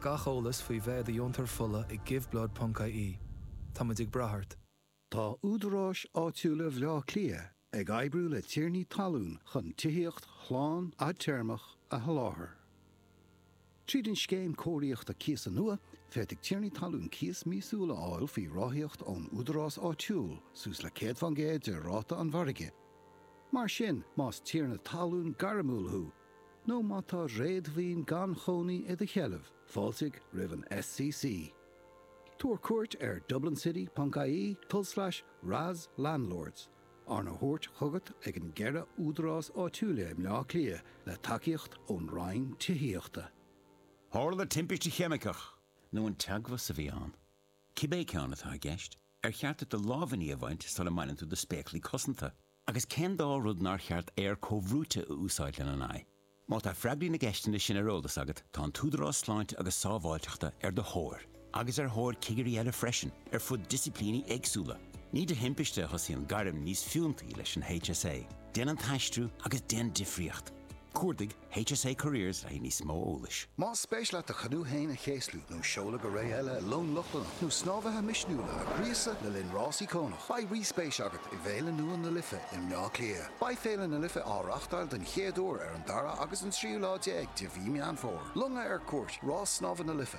Gach eolas faoi bheith i do dheontoir fola ag giveblood.ie. Táimid ag brath ort. Tá údaráis áitiúla Bhleá Cliath ag oibriú le tiarnaí talún chun tithíocht shlán fhadtéarmach a sholáthar. Tríd an Scéim Cóiríochta Cíosa nua, féadfaidh tiarnaí talún cíos míosúil a fháil faoi ráthaíocht ón údarás áitiúil, suas le 100% de ráta an mhargaidh. Mar sin, más tiarna talún gairmiúil thú, nó má tá réadmhaoin gan chónaí i do sheilbh, fáiltigh roimh an SCC. Tabhair cuairt ar dublincity.ie tulslais RAS landlords, arna thabhairt chugat ag an gceithre údarás áitiúil i mBleá Cliath le tacaíocht ón Roinn Tithíochta. Tharla timpiste cheimiceach, nó an teagmhas a bhí ann. Cibé ceann atá i gceist, ar cheart duit do lámhainní a bhaint sula mbaineann tú do spéaclaí cosanta? Agus cén dá rud nár cheart aer comhbhrúite a úsáid lena n-aghaidh? Má tá freagraí na gceisteanna sin ar eolas agat, tá an tÚdarás Sláinte agus Sábháilteachta ar do thóir, agus ar thóir cigirí eile freisin, ar fud disciplíní éagsúla. Ní de thimpiste a thosaíonn gairm níos fiúntaí leis an HSA. Déan an t-aistriú agus déan difríocht! Cuardaigh HSA Careers le haghaidh níos mó eolais. Más spéis leat do chanú féin a chéaslú, nó seoladh go ré eile i long Lochlannach, nó snámhaithe misniúla a ghríosadh le linn rás íocónach, beidh rí-spéis agat i bhféile nua na Life i mBleá Cliath. Beidh Féile na Life á reáchtáil den chéad uair ar an dara agus an tríú lá déag de mhí Meán Fómhair. Longa ar cuairt, Rás Snámha na Life.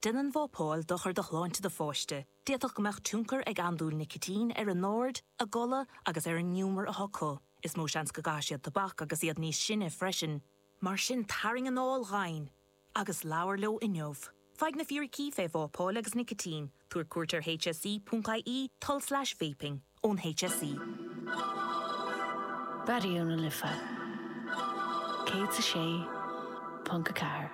Déanann vapáil dochar do shláinte do pháiste, d'fhéadfadh go mbeadh tionchar ag andúil nicitín ar a n-aird, a gcodladh agus ar an ngiúmar atá acu. Is mó seans go gcaithfidh siad tobac agus iad níos sine freisin. Mar sin tarraing anáil dhomhain agus labhair leo inniu. Faigh na fíricí fé vápáil agus nicitín, tabhair cuairt ar hse.ie, tulslais vaping, ón hse. Raidió na Life 106.4.